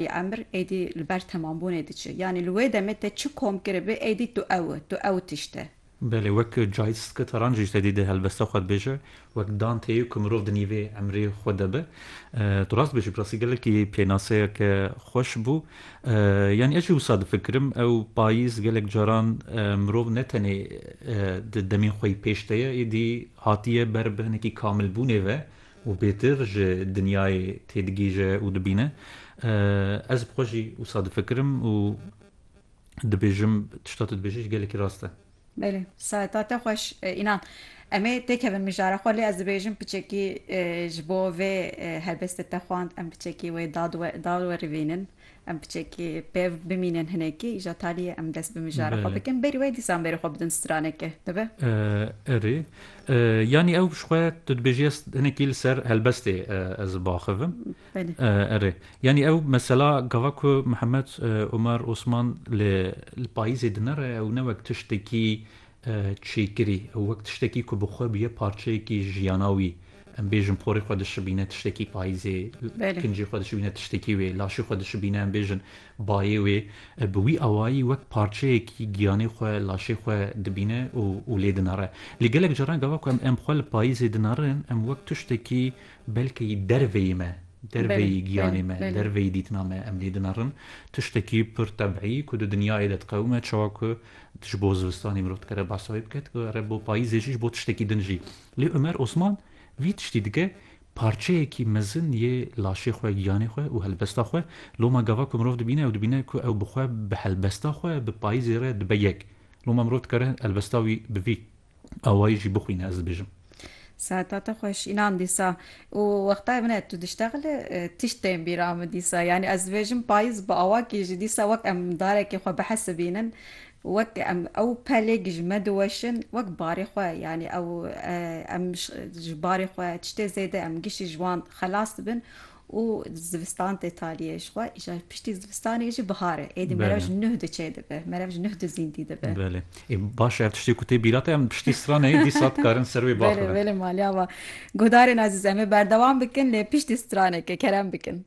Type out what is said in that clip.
Yê emir êdî li ber temambûnê diçe. Yanî li wê demê te çi kom kiribi êdî tu ew i, tu ew tişt e. Belê, wek Cahit Skitaran jî ji te dî di helbesta xwe dibêje, wek Danteyê ku mirov di nîvê emrê xwe de be. Tu rast dibêjî, bi rastî gelekî pênaseyeke xweş bû. Yanî ez jî wisa difikirim, ew payîz gelek caran mirov ne tenê di demên xwe yî pêş de ye, êdî hatiye ber bi hinekî kamilbûnê ve, û bêtir ji dinyayê têdigihîje û dibîne. Ez bi xwe jî wisa difikirim û dibêjim tişta tu dibêjî ji gelekî rast e. Belê. Saeta te xweş înan. Em ê têkevin mijara xwe lê ez dibêjim piçekî ji bo vê helbestê te xwend em piçekî wê da da werivînin. Em piçekî pêv bimînin hinekî îja talîyê em dest bi mijara xwe bikin berî wê dîsan berî xwe bidin stranekê dibe? Erê yanî ew ji xwe tu dibêjî ez hinekî li ser helbestê ez ê biaxivim. Erê yanî ew mesela gava ku Mihemed Omer Osman li payîzê dinere ew ne wek tiştekî çêkirî û wek tiştekî ku bi xwe bûye parçeyekî jiyana wî. Em bêjin porê xwe dişibîne tiştekî payîzê, kincê xwe dişibîne tiştekî wê, laşê xwe dişibîne em bêjin bayê wê. Bi wî awayî wek parçeyekî giyanê xwe, laşê xwe dibîne û lê dinare. Lê gelek caran gava ku em xwe li payîzê dinarin em wek tiştekî belkî derveyî me, derveyî giyanê me, derveyî dîtina me em lê dinarin. Tiştekî pir tebîî ku di dinyayê de diqewime çawa ku Ji bo zivistanê mirov dikare behsa wê bike, dikare bo payîzê jî ji bo tiştekî din jî. Lê Omer Osman vî tiştî dike, Parçeyekî mezin yê laşê xwe, giyanê xwe û helbesta xwe, loma gava ku mirov dibîne ew dibîne ku ew bi xwe, bi helbesta xwe, bi payîzê re dibe yek. Loma mirov dikare helbesta wî bi vî. awayî jî bixwîne ez dibêjim. Saeta te xweş înan dîsa û wextayê min e tu diştexile tişt tên bîra min dîsa yanî ez dibêjim payîz bi awakî jî dîsa wek em darekê xwe bihesibînin wek em ew pelêk ji me diweşin wek barê xwe yanî ew em ji barê xwe tiştê zêde em giştî ji wan xelas dibin û zivistan tê taliyê ji xwe îşa piştî zivistanê jî bihar e êdî merev ji nuh di çêdibe merev ji nuh di zîndî dibe. Belê ê baş e ev tiştê ku tê bîra te em piştî straneyê dîsa dikarin ser wê baxivin. Belê belê maliya me. Guhdarên ezîz em ê berdewam bikin lê piştî straneke kerem bikin.